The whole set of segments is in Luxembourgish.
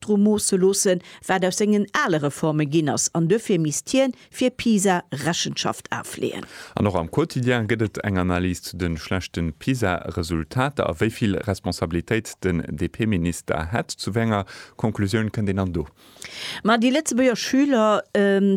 dru moosse loossen, wat aus sengen ale Reforme ginn ass, an duerfir misst hien fir Pisa Rechenschaft afleeën. An och am Quotidien gëtt et eng Analys zu de schlechte Pisa-Resultater a wéi vill Responsabilitéit den DP-Minister hätt. Zu wéi enger Conclusioun kënnt een dann do? Ma déi Lëtzebuerger Schüler,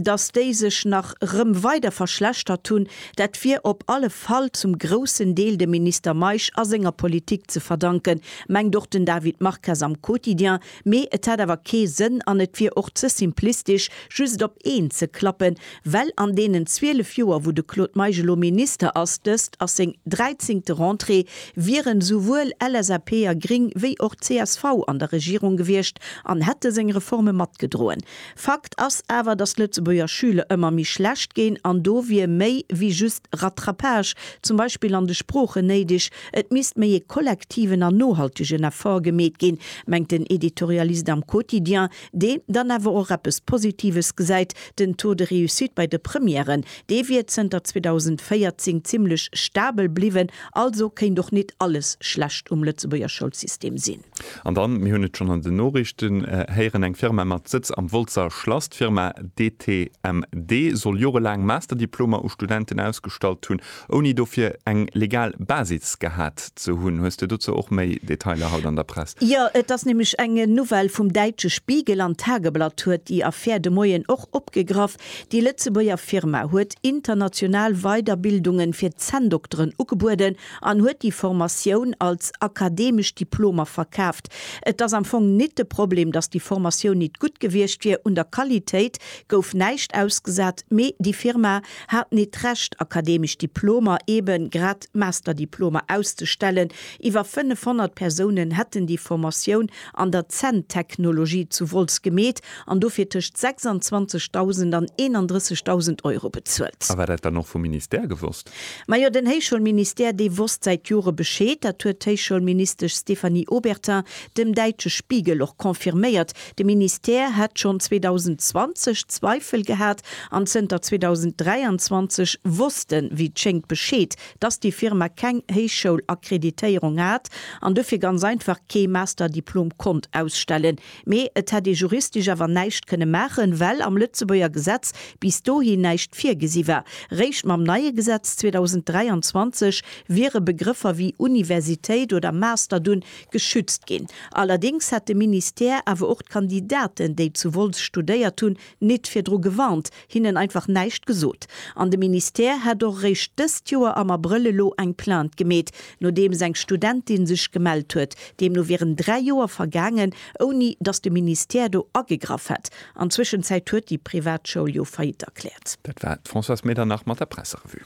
datt déi sech nach rëm weider verschlechtert hunn, dat wier op alle Fall zum groussen Deel dem Minister Meisch a senger Politik ze verdanken, Mengt och den David Marques am Quotidien, mee et hätt awer kee Sënn an et wier och ze simplistesch just op een ze klappen, well an deenen 12 Joer wou de Claude Meisch elo Minister ass, dëst ass seng dräizéngte Rentrée, wieren esouwuel LSAP a Gring wéi och csv an der Regierung gewiescht an hätte seng Reforme matgedroen. Fakt ass awer, datt d'Lëtzebuerger Schüler ëmmer méi schlecht ginn an do wier méi wéi just Rattrapage, zum Beispill an de Sproochen, néideg. Et misst méi ee kollektiven an nohaltegen Effort gemeet ginn, mengt den Editorialist am Quotidien, deen dann awer och eppes Positives gesäit, Den Taux de réussite bei de Premièren, dee wier zënter 2014 zimmlech stabel bliwwen, also kéint och nit alles schlecht um Lëtzebuerger Schoulsystem sinn. An dann, mir hunn et schonn an den Noriichten héieren, eng Firma mat Sëtz am Wolzer Schlass, d'Firma DTMD, soll jorelaang Masterdiplomer u Studenten ausgestallt hunn, ouni dofir eng legal Basis gehat ze hunn. Hues de dozou och méi Detailer haut an der Press? Jo, et ass nämlech eng Nouvelle vum däitsche Spiegel an d'Tageblatt huet déi Affär de Moien och opgegraff. Déi Lëtzebuerger Firma huet international Weiderbildungen fir Zänndokteren ugebueden an huet déi Formatioun als akademesch Diplomer verkaaft. Et ass am Fong nit de Problem, dass déi Formatioun nit gutt gewiescht wier, un der Qualitéit gouf näischt ausgesat, mee déi Firma, haten et d'Recht, akademesch Diplomer, eben grad Masterdiplomer, auszustellen. Iwwer 500 Persounen hätten déi Formatioun an der Zänntechnologie zu Wolz gemeet an dofir tëscht 26.000 an 31.000 Euro bezuelt. A war dat dann och vum Ministère gewosst? Majo, den Héichschoulministère, dee wosst säit Jore Bescheed. Dat huet d'Héichschoulministesch Stéphanie Obertin dem däitsche Spiegel och confirméiert, De Ministère hätt schonn 2020 Zweifel gehat an zënter 2023 wosst en, wéi et schéngt, Bescheed, dass déi Firma keng Héichschoul-Akkreditéierung hat an dofir ganz einfach kee Master-Diplom konnt ausstellen. Mee et hätt ee juristesch awer näischt kënne maachen, well am Lëtzebuerger Gesetz bis dohi näischt virgesi war. Réischt mam neie Gesetz 2023 wiere Begrëffer wéi Universitéit oder Master dunn geschützt ginn. Allerdéngs hätt de Ministère awer och d'Kandidaten, déi zu Wolz studéiert hunn, nit virdru gewarnt, hinnen einfach näischt gesot. An de Ministère hätt och eréischt dëst Joer am Abrëll elo eng Plainte gemeet, nodeems eng Studentin sech gemellt huet. Deemno wieren dräi Joer vergaangen, ouni datt de Ministère do agegraff hätt. An Zwëschenzäit huet déi Privatschoul jo Faillite erkläert. Dat war d'Françoise Medernach mat der Presserevue.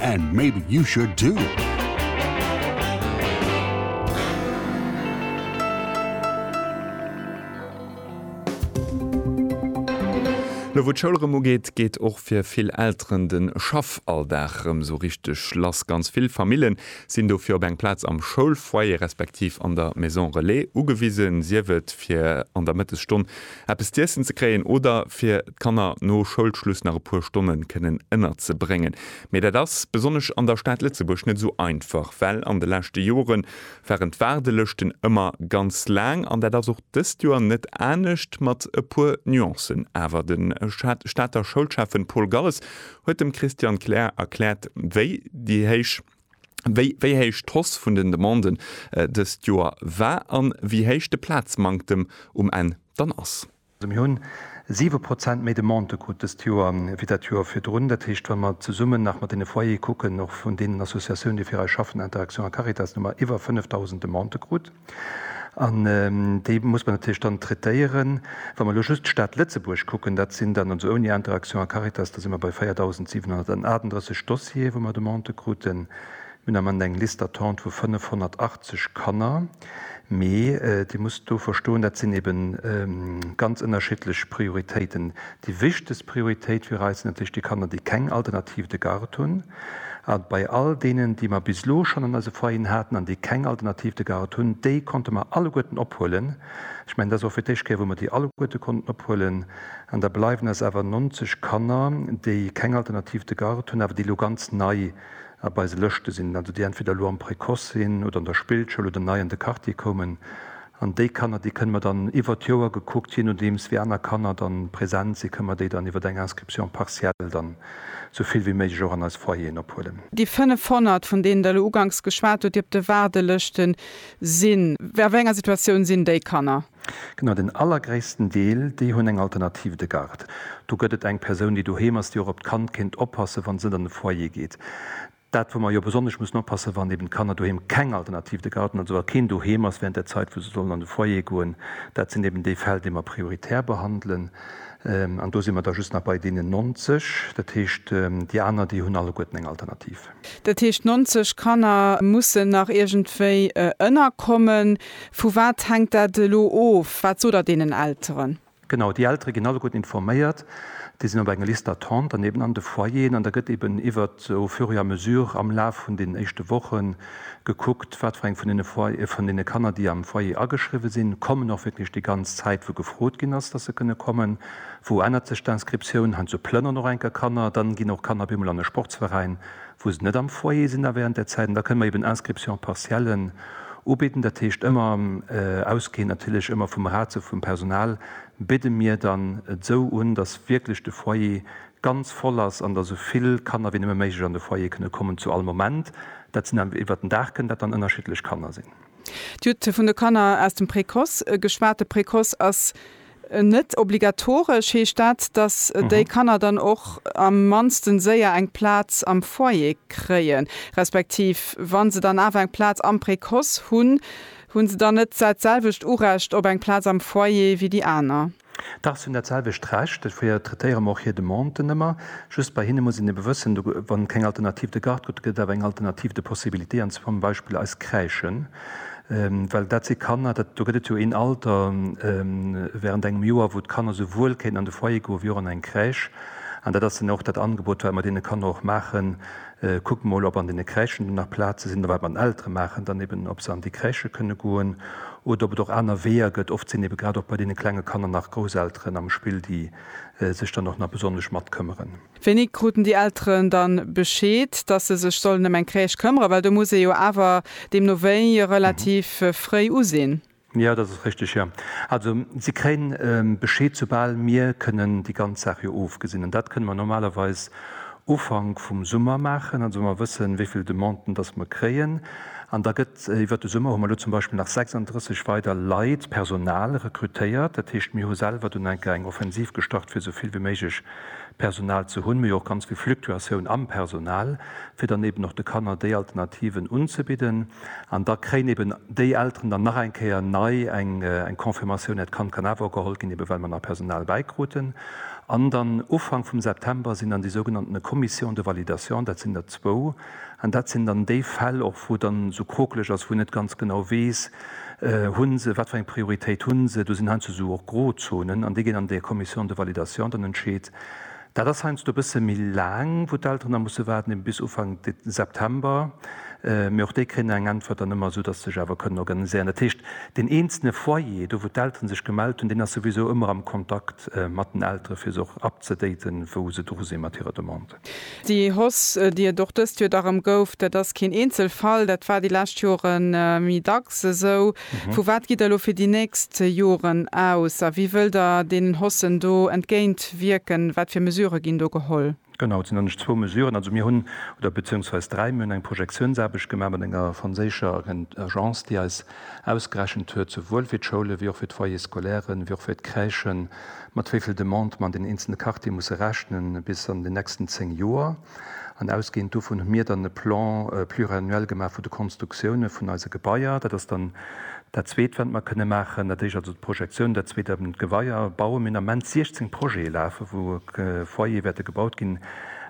And maybe you should too! Lo wou d'Schoul rëm ugeet, geet och fir vill Elteren den Schaffalldag rëm sou richteg lass. Ganz vill Famillen sinn dofir op eng Plaz am Schoulfoyer respektiv an der Maison Relais ugewisen, sief et fir an der Mëttesstonn eppes z'iessen ze kréien oder fir d'Kanner no Schoulschluss nach e puer Stonnen kënnen ënnerzebréngen. Mee dat ass, besonnesch an der Stad Lëtzebuerg, net esou einfach, well an de leschte Jore waren d'Waardelëschten ëmmer ganz laang an dat ass och dëst Joer net anescht, mat e puer Nuancen awer. De Stater Schoulschäffen Paul Galles huet dem Christian Klähr erkläert, wéi déi héich wéi wéi héich d'Hausse vun den Demanden dëst Joer war a wéi héich de Plazmanktem um Enn dann ass. Mir hunn siwe Prozent méi Demandë krut dëst Joer wéi dat Joer virdrun. Dat heescht, wa mer zesummen nach mat deene Foyere kucken, och vun deenen Associatiounen, déi fir eis schaffen, Interaction a Caritas, hu mer iwwer 5.000 Demandë krut. An déi muss mer natierlech dann traitéieren. Wa mer elo just d'Stad Lëtzebuerg kucken, dat sinn dann, also ouni Interaction a Caritas, da si mer bei 4.738 Dossiere wou mer Demandë kruten. Mir hunn am Ament eng Liste d'attente vu 580 Kanner. Mee Dir musst do verstoen, dat sinn eebe ganz ënnerschiddlech Prioritéiten, Déi wichtegst Prioritéit fir eis sinn natierlech déi Kanner, déi keng Alternative de garde hunn. A bei all deenen, déi mer bis elo schonn an eise Foyeren haten an déi keng Alternative de garde hunn, déi konnte mer alleguerten ophuelen. Ech mengen, dat ass och fir d'éischt Kéier, wou mer déi alleguerte konnten ophuelen. An da bleiwen eis awer 90 Kanner, déi keng Alternative de garde hunn, awer déi elo ganz nei op eise Lëschte sinn, also déi entweder elo am Précoce sinn oder an der Spillschoul oder nei an de Quartier koumen. An déi Kanner, déi kënne mer dann iwwert d'Joer gekuckt, je nodeems wéi aner Kanner dann present si, kënne mer déi dann iwwert eng Inscription partielle dann esou vill wéi méiglech och an eis Foyeren ophuelen. Déi 500, vun deenen Der elo uganks geschwat hutt, déi op de Waardelëschte sinn, a wéi enger Situatioun sinn déi Kanner? Genau, den allergréissten Deel, déi hunn eng Alternative de garde. Do gëtt et eng Persoun, déi doheem ass, déi och op d'Kand kéint oppassen, wann se net an de Foyer geet. Dat wou mer jo besonnesch mussen oppassen, wann eben d'Kanner doheem keng Alternativ, de Garten, also wa keen doheem ass während der Zait wou se sollen an de Foyer goen, dat sinn eben déi Fäll déi mer prioritär behandelen. An do si mer da just nach bei deenen 90, dat heescht déi aner déi hunn alleguerten eng Alternativ. Dat heescht d'nonzeg Kanner mussen nach iergendwéi ënnerkommen. Vu wat hänkt dat elo of? Wat sot Der deenen Elteren? Genau, déi Eltere ginn alleguerten informéiert, déi sinn op enger Liste d'attente, dann eben an de Foyeren, an da gëtt eben iwwert au fur et à mesure am Laf vun den éischte Woche gekuckt, wat fir eng vun deene Foy-, vun deene Kanner, déi am Foyer ageschriwwe sinn, kommen och wierklech déi ganz Zäit, wou gefrot ginn ass, dass se kënne kommen. Wou ännert sech d'Inscriptioun? Heiansdo plënneren och eng Kéier Kanner, dann ginn och Kanner op eemol an e Sportsveräin, wou se net am Foyer sinn, da während där Zäit, an da kënne mer eben Inscriptions partiellen ubidden, dat heescht ëmmer ausgehend natierlech ëmmer vum Ratio vum Personal, bidde mir dann esou un, dass wierklech de Foyer ganz voll ass an dass esou vill Kanner wéi nëmme méiglech an de Foyer kënne kommen zu all Moment. Dat sinn dann iwwert den Dag kënnen dat dann ënnerschiddlech Kanner sinn. Dir hutt vun de Kanner aus dem Précoce geschwat. De Précoce ass. Net obligatoresch heescht dat, datt déi Kanner dann och am mannsten séier eng Plaz am Foyer kréien, respektiv wa se dann awer eng Plaz am Précoce hunn, hu se dann net dat selwecht Urecht op eng Plaz am Foyer wéi déi aner? Dach, se hunn dat selwecht Recht. Dofir traitéiere mer och hir Demanden ëmmer. Just bei hinne muss een ebe wëssen, wa keng Alternativ de Garde gëtt, da gëtt et awer eng Alternativ de Possibilités, an zum Beispill eis Crèchen. Well dat si Kanner, dat, do gëtt et jo een Alter während engem Joer, wou d'Kanner esouwuel kéinten an de Foyer goen, wéi och an eng Crèche. An dat ass dann och dat Angebot, wat mer deene Kanner och maachen, Kuckt mol, ob an deene Crèchen do nach Plaze sinn. Oder wat mer den Eltere maachen dann eben, ob se an déi Crèche kënne goen oder ob et och aner Weeër gëtt. Oft sinn ebe grad och bei deene klenge Kanner nach Grousselteren am Spill, déi sech dann och nach besonnesch matkëmmeren. Wéini kruten déi Elteren dann Bescheed, dass se sech sollen ëm eng Crèche këmmeren? Well do muss ee jo awer deemno wéi relativ fréi usinn. Jo, dat ass richteg, jo. Also si kréien Bescheed, soubal mir kënnen déi ganz Saach jo ofgesinn. An dat kënne mer normalerweis Ufank vum Summer maachen, also wa mer wëssen, wéi vill Demanden dass mer kréien. An da gëtt iwwert de Summer, hu mer elo zum Beispill nach 36 weider Leit, Personal, rekrutéiert. Dat heescht, mir hu selwer dunn enker eng Offensiv gestart, fir esou vill wéi méiglech Personal ze hunn, mee och ganz vill Fluktuatioun am Personal, fir dann eben och de Kanner déi Alternativen unzebidden. An da kréien eben déi Elteren dann nach eng Kéier nei eng Confirmatioun, hiert Kand kann awer och geholl ginn, eben well mer nach Personal bäikruten. An dann Ufank vum September sinn dann déi sougenannten Commissions de validation, dat sinn der zwou, An dat sinn dann déi Fäll och, wou et dann esou krokeleg ass, wou een net ganz genau weess, hu se, wat fir eng Prioritéit hu se. Do sinn heiansdo esou och Grozonen an déi ginn an de Commission de validation dann entscheet. Dat ass heiansdo e bësse méi laang, wou d'Elteren da musse waarden, eben bis Ufank September. Mee och déi kréien da eng Äntwert dann ëmmer, esou datt se sech awer kënnen organiséieren. Dat heescht, deen eenzele Foyer, do wou d'Elteren sech gemellt hunn, deen ass souwisou ëmmer am Kontakt mat den Eltere fir se och up ze daten, wou se dru si mat hirer Demande. Déi Hoss, déi et och dëst Joer da rëm gouf, dat ass keen Eenzelfall, dat war déi lescht Jore méi dacks esou. Vu wat gitt Der elo fir déi nächst Joren aus a wéi wëllt Der deenen Hossen do entgéint wierken? Wat fir Mesurë ginn do geholl? Genau, et sinn eigentlech zwou Mesuren. Also mir hunn, oder beziéungsweis dräi, mir hunn eng Projektiounsaarbecht gemaach mat enger franséischer Agence, déi eis Ausgerechent huet souwuel fir d'Schoule wéi och fir d'Foyers scolairen, wéi och fir d'Crèchen, mat wéi vill Demandë mer an den eenzelne Quartiere musse rechne bis an den nächsten zéng Joer. An ausgehend dovun hu mir dann e Plan pluriannuel gemaach vu de Konstruktioune vun eise Gebaier. Dat ass dann dat Zweet, wat mer kënne maachen. Dat Éischt also d'Projektioun, dat Zweet eben d'Gebaier bauen. Mir hunn am Moment 16 Projete lafe wou Foyere wäerte gebaut ginn,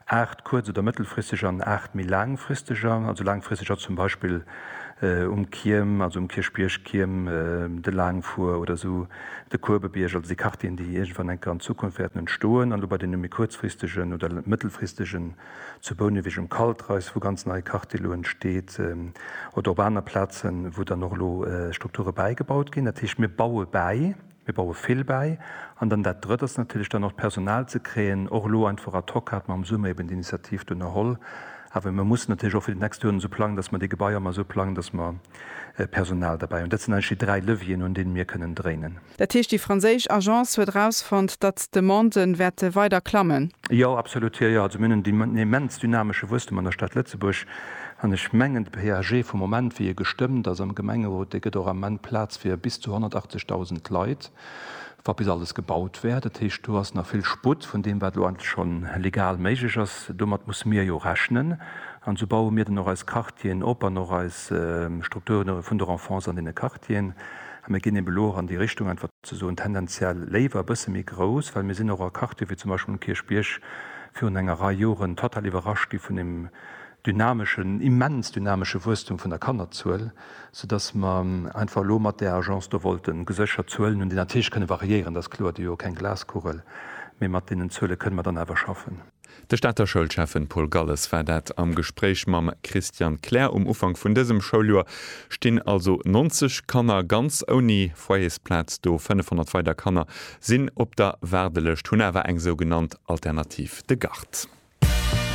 aacht kuerz oder mëttelfristeg an aacht méi laangfristeger. Also laangfristeg ass zum Beispill um Kierm, also um Kierchbierg, Kierm, de Laangfuer oder esou de Kuebebierg, also déi Quartieren, déi iergendwann enker an Zukunft wäerten entstoen, an elo bei deene méi kuerzfristegen oder mëttelfristegen, zu Bouneweg um Kaltreis, wou ganz nei Quartier elo entsteet, oder op aner Plazen, wou dann och elo Strukture bäigebaut ginn. Dat heescht, mir baue bäi. Mir baue vill bäi. An dann dat Drëtt ass natierlech dann och d'Personal ze kréien. Och elo einfach ad hoc hate mer am Summer eben d'Initiativ d'unerholl. Awer mir mussen natierlech och fir déi nächst Joren esou plangen, dass mer déi Gebaier mer esou plangen, dass mer Personal derbäi hunn. Dat sinn eigentlech déi dräi Levieren, un deene mir kënnen dréinen. Dat heescht, déi franséisch Agence huet erausfonnt, datt d'Demande wäerte weider klammen? Jo, absolut. Jo, jo. Also mir hunn en immens dynamesche Wuesstem an der Stad Lëtzebuerg. An ech mengen, de PAG vum Moment, wéi e gestëmmt ass am Gemengerot, dee gëtt och am Moment Plaz fir bis zu 180.000 Leit, wa bis alles gebaut wär. Dat heescht, do ass nach vill Sputt vun deem, wat elo eigentlech schonn legal méiglech ass. Domat musse mir jo rechnen. An esou baue mir dann och eis Quartieren op an och eis Strukture vun der Enfance an deene Quartieren. A mir ginn eben elo och an déi Richtung, einfach ze soen, tendenziell léiwer e bësse méi grouss, well mir sinn och a Quartiere wéi zum Beispill um Kierchbierg virun enger Rei Joren total iwwerrascht gi vun deem, dynameschen, immens dynamesche Wuesstum vun der Kannerzuel, soudass mer einfach elo mat där Agence do wollten geséchert Zuelen hunn, déi natierlech kënne variéieren, dat ass kloer, Dir hutt jo keng Glaskugel, mee mat deenen Zuele kënne mer dann awer schaffen. De Stater Schoulschäffen Paul Galles war dat am Gespréich mam Christian Kler. Um Ufank vun dësem Schouljoer stinn also 90 Kanner ganz ouni Foyersplaz do. 500 weider Kanner sinn op der Waardelëscht, hunn awer eng sougenannt Alternativ, de Gard.